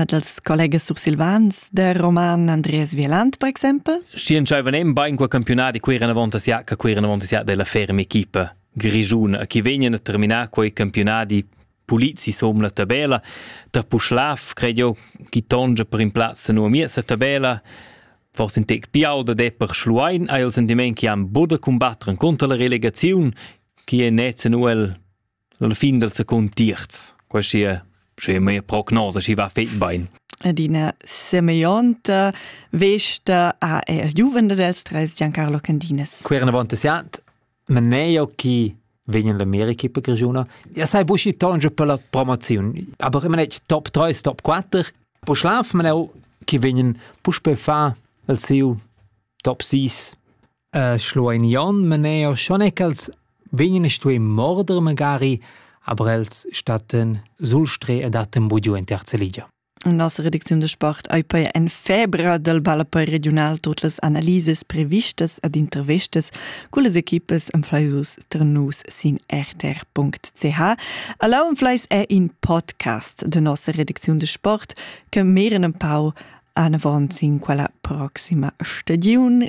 Ed als collegas sursilvans de Roman Andreas Vieland, per exempel. Schi entscheivan en bein quei campiunat e quei renavonta sia, che quei renavonta sia della ferma equipa grigiuna, che vegnan a terminar quei campionati pulizi som la tabella. Tra Puschlav, credo, chi tongia per in plazza nu a miez tabella, forse in tec piau da de per Schluein, hai il sentiment che han buda combattere contro la relegazione, che è net nuel la fin del secund terz quasi sche mia prognosa si va fet bein ed ina semeglionta vesta a el giuvende dels tres Giancarlo Candinas. Qui erano avanti siat, ma neio chi vegnan l'America per grigiuna. Ja sai buschi tonge per la promozion, aber immer nicht top 3, top 4. Po schlaf man auch, chi vegnan pusch per fa el siu top 6 schluein Jon maneo schon e ch'els vegnan stuei morder magari, aber els statten sul stre e datten bugiu in terza ligia. Las reducziun de sport ei poi en febra dal ballapoi regional tot las analises previstas ad intervestas cullas equipas am fleisus ternus sin rtr.ch. Alla am fleis è in podcast de nossa reducziun de sport che meren empau anavon sin quella proxima stagiun.